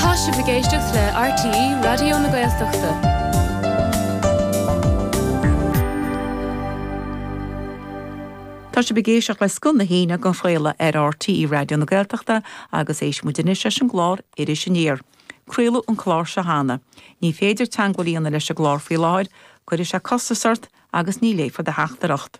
Tá sibh ag éisteacht le RTÉ Raidió na Gaeltachta. Tá sibh ag éisteacht le Scoth na hAoine dhá chraoladh ar RTÉ Raidió na Gaeltachta agus éistfidh muid anois leis an gclár Iris Aniar. Craoladh an clár seo cheana. Ní féidir teangmháil a dhéanamh leis an gclár faoi láthair, cuirfidh sé costas ort agus ní léifear do theachtaireacht.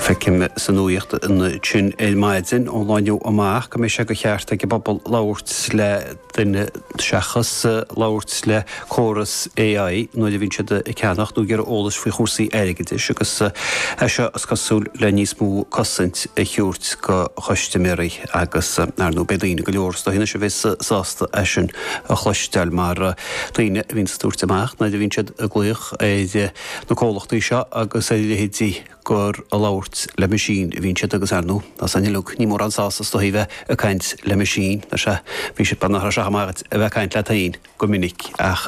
Feicim sa nuacht ansin ar maidin, ón lá inniu amach, go mbeidh sé de cheart ag an bpobal labhairt le duine seachas labhairt le córas AI nuair a bhíonn siad ag ceannach nó ag iarraidh eolais faoi chúrsaí airgeadais agus é seo, is cosúil, le níos mó cosaint a thabhairt go chustaiméirí agus, ar ndóigh, beidh daoine go leor, is dóigh anois, a bheidh sách sásta é sin a chloisteáil mar tá daoine a bhíonn ag tabhairt amach nuair a bhíonn siad ag glaoch ar na comhlachtaí seo agus a leithéidí gur ag labhairt le machine a bhíonn siad agus ar ndú, is é an uile dhuine, ní mórán sásamh is dóigh bheith ag caint le machine, nach sé? Bhí siad beagnach chomh maith dhuit a bheith ag caint leat féin go minic ach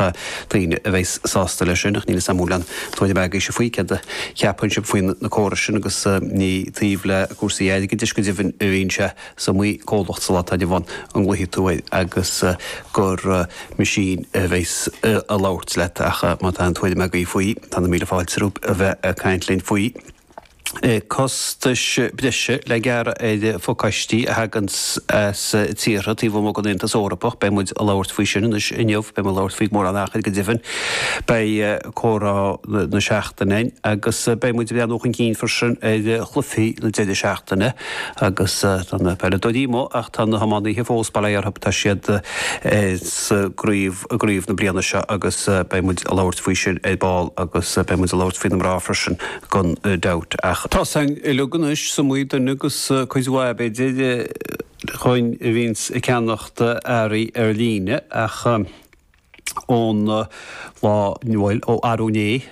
daoine a bheidh sásta leis sin ach níl fhios a'm an bhfuil an tóin a bheith ag aois a faoi céard a cheapann sibh faoi na córais sin agus ní taobh le cúrsaí airgidis go deimhin a bhíonn sé Is iomaí comhlacht sa lá atá inniu ann a nglaofaidh tú air agus gur machine a bheas ag labhairt leat ach má tá aon tuairim agaibh faoi, tá na míle fáilte romhaibh a bheith ag caint linn faoi. Costais breise le gearradh ar phacáistí a thagann as tíortha taobh amuigh den Aontas Eorpach, beidh muid ag labhairt faoi sin anois inniu, beidh muid ag labhairt faoi gan mórán achair go deimhin. Beidh comhrá na seachtaine againn agus beidh muid ag breathnú chun cinn freisin ar chluichí na deireadh seachtaine. Agus tá na peileadóirí amuigh ach tá na hiománaithe fós, bail ó Dhia orthu, tá siad sa gcraobh i gcraobh na bliana seo agus beidh muid ag labhairt faoi sin ar ball agus beidh muid ag labhairt faoi na mná freisin gan dabht. Ach tá sin uilig anois amach romhainn agus cuid mhaith, b'fhéidir, againn a bhíonns ag ceannacht earraí ar líne ach. ón lá bhuel ó arú né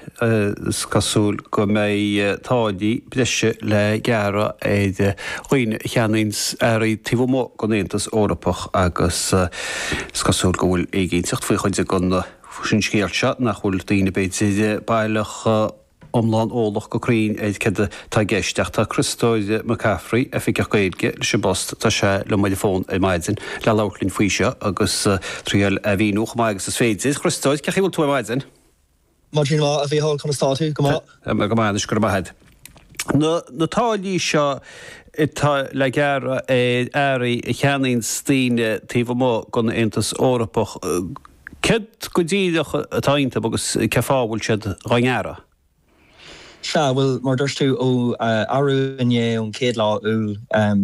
is cosúil go mbeidh táillí breise le gearradh ar dhaoine a cheannaíonns earraí taobh amuigh den Aontas Eorpach agus is cosúil go bhfuil éiginnteacht faoi chuid den scéal seo nach bhfuil daoine b'fhéidir baileach iomlán eolach go cruinn ar céard atá i gceist ach tá Criostóir McCaffrey, Oifigeach Gaeilge, leis an bpost. Tá sé liom ar an bhfón ar maidin le labhairt linn faoi seo agus iarracht é a mhíniú chomh maith agus is féidir. Chriostóir, cé chaoi bhfuil tú ar maidin? Maidin mhaith, a Mhícheál, conas atá tú? Go maith. Go maith anois, go raibh maith agat. Na táillí seo atá le gearradh ar earraí a cheannaíonns daoine taobh amuigh den Aontas Eorpach, Céard go díreach atá iontu agus cé fáth a bhfuil siad dha ngearradh? Sea, bhuel, mar a dúirt tú, ó arú inné ón chéad lá Iúil,